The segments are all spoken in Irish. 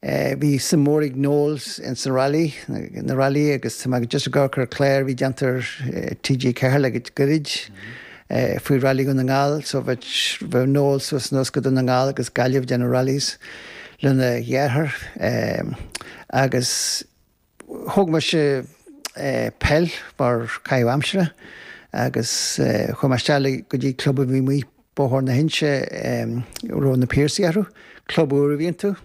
Bhí suim mór ag Noel ins na railí, na railí agus tá mé just ag amharc ar clár a bhí déanta ar TG4 le goirid faoi Railí Dhún na nGall so bheadh Noel suas anuas go Dún na nGall agus Gaillimh ag déanamh rallies lena dhearthair agus Thóg mise peil mar caitheamh aimsire agus chuaigh mé isteach go dtí club a bhí amuigh, Bóthar na hInse, a raibh Na Piarsaigh orthu. Club úr a bhí iontu.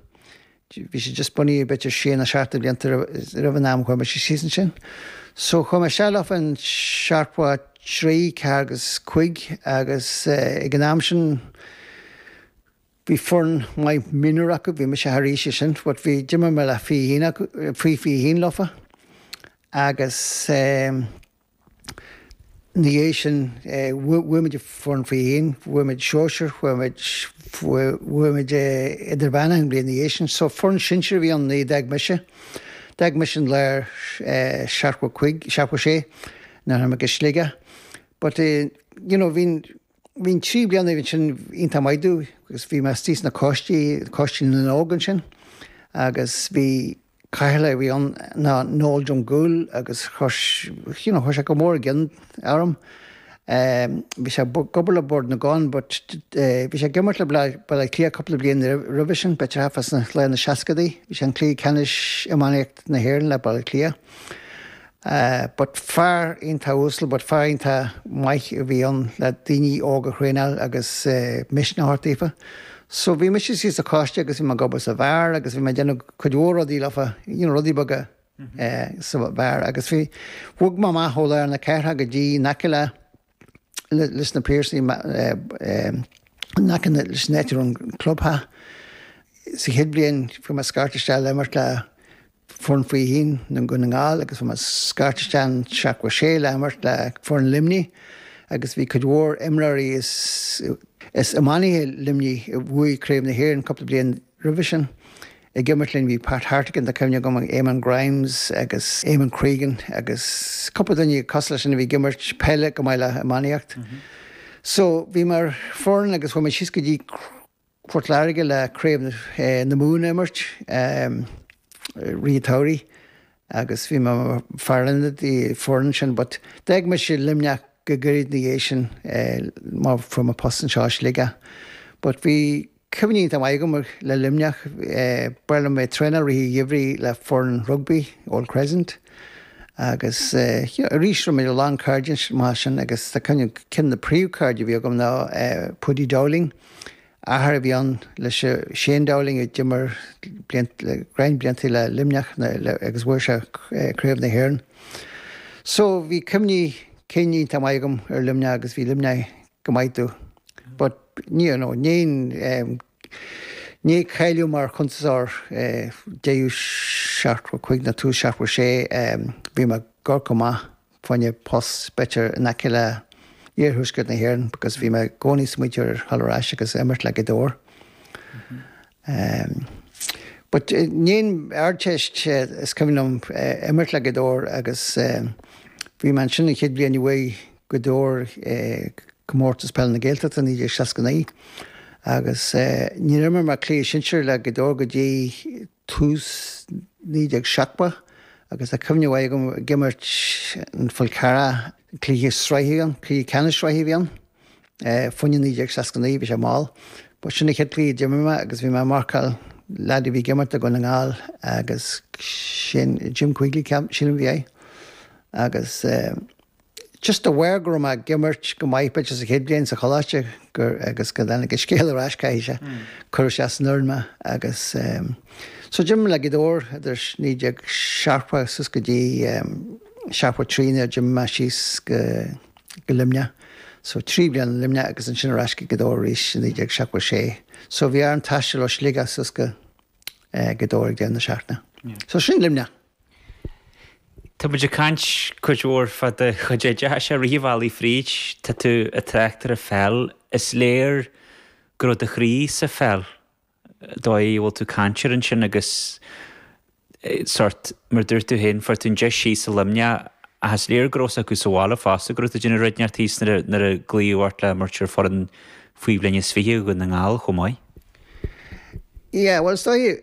Bhí sé just bunaithe b'fhéidir sé nó seacht de bhlianta roimh an am a chuaigh mise síos ansin. So chuaigh mé isteach leofa i seachtó a trí, ceathair agus cúig agus ag an am sin, Bhí foireann maith mionúr acu, bhí mise thar aois sin but bhí, d'imir mé le fiche haon acu, faoi fiche haon leofa agus eh ina dhiaidh sin eh bhuaigh muid foireann faoi fiche haon, bhuaigh muid sóisear, bhuaigh muid, bhuaigh muid eh idirmheánach an bhliain ina dhiaidh sin so foireann sinsir a bhí ann nuair a d'fhág mise, d'fhág mise i lár eh seachtó cúig, seachtó sé nuair a tháinig mé go Sligeach but eh you know bhínn, Bhí na trí bliana sin iontach maith dúinn agus bhí mé istigh sna coistí, Coiste na nÓg ansin agus bhí Cathaoirleach a bhí ann ná Noel Drumgoole agus you know chuir sé go mór i gcion orm. Bhí sé ag obair le Bord na gCon but bhí sé ag imirt le Baile Átha Cliath cúpla bliain roimhe sin, b'fhéidir thart fá lár na seascaidí. Bhí sé i gcluiche ceannais iománaíocht na hÉireann le Baile Átha Cliath. Eh, but fear iontach uasal but fear iontach maith a bhí ann le daoine óga a thraenáil agus eh, misneach a thabhairt daofa. So bhí mise síos sa choiste agus bhí mé ag obair sa bheár agus bhí mé ag déanamh cuid mhór rudaí leofa, you know, rudaí beaga eh, sa bheár agus bhí, bhog mé amach ó lár na cathrach go dtí in aice le, leis na Piarsaigh in aice leis an áit a raibh an clubtheach. Sa chéad bhliain fuair mé scairt isteach le imirt le foireann faoi fiche haon Dhún na nGall agus fuair mé scairt isteach i seachtó sé le imirt le foireann Luimnigh agus bhí cuid mhór imreoirí is iománaithe Luimnigh a bhuaigh Craobh na hÉireann cúpla bliain Roimhe sin, ag imirt linn bhí Pat Hartigan, tá cuimhne agam, Eamonn Grimes agus Eamonn Cregan agus cúpla duine cosúil leis sin a bhí ag imirt peile chomh maith le iománaíocht. So, bhí mé ar an fhoireann agus chuaigh mé síos go dtí Port Láirge le craobh na Mumhan a imirt i rith an tsamhraidh agus bhí mé mar fear ionaid don fhoireann sin but d'fhág mise Luimneach go gairid ina dhiaidh sin mar fuair mé post anseo i Sligeach. But bhí. Cuimhní an-mhaith agam le Luimneach, bhíodh mé ag traenáil i rith an gheimhridh le foireann rugbaí, Old Crescent, agus you know arís bhí a lán cairde maith ansin agus tá cuimhne agam ceann de na príomhchairde a bhí agam ná Paudie Dowling, athair a bhí ann le Shane Dowling a d'imir go roinnt blianta le Luimneach agus bhuaigh sé craobh na hÉireann. So bhí cuimhní cinn iontach maith agam ar Luimneach agus bhí Luimneach go maith tú but ní you know níon níon cailleadh mar chuntasár deiú seacht bhur cuig ná tú seacht bhur sé bhí mé gur go maith fainne post better in aice le iarthuaisceart na hÉireann because bhí mé i gcónaí sa muinteoir thall arais agus imirt le go dtabhair Um. But i ndiaidh an Ardteist is cuimhin liom imirt le Gaoth Dobhair agus bhí mé ansin an chéad bhliain a bhuaigh Gaoth Dobhair Comórtas Peile na Gaeltachta 1969 agus níor imir mé cluiche sinsir le Gaoth Dobhair go dtí tús naoi déag seachtó agus tá cuimhne mhaith agam ag imirt ar an Fhál Carrach, cluiche sraithe, cluiche ceannais sraithe a bhí ann. Fómhar 1969, bhí sé mall. Ba sin an chéad chluiche a d'imir mé agus bhí mé ag marcáil leaid a bhí ag imirt do Dhún na nGall agus sin Jim Quigley ceapaim, sílim bhí aige. Agus just aware go raibh mé ag imirt go maith b'fhéidir sa chéad bhliain sa choláiste gur agus go dtáinig an scéal ar ais caithfidh sé, cuireadh ar an fhoireann mé agus so d'imir mé le Gaoth Dobhair idir 1970 suas go dtí 73 nuair a d'imigh mé síos go go Luimneach. So trí bliana i Luimneach agus ansin ar ais go Gaoth Dobhair arís i 1976. So bhí orm taisteal ó Shligeach suas go Gaoth Dobhair ag deireadh na seachtaine. So sin Luimneach. Tá muid ag caint cuid mhór fá do chuid oideachais ach rith an bhealaigh fríd tá tú ag trácht ar an pheil. Is léir go raibh do chroí sa pheil. dóigh a bhfuil tú ag caint air ansin agus sort, mar dúirt tú féin, fuair tú an deis síos i Luimneach ach is léir go raibh a fhios acu sa bhaile fosta go raibh tú ag déanamh rud inteacht ceart thíos nuair a, nuair a glaodh ort le himirt ar fhoireann faoi bhliain is fiche Dhún na nGall chomh maith. Yeah, bhuel, is dóigh.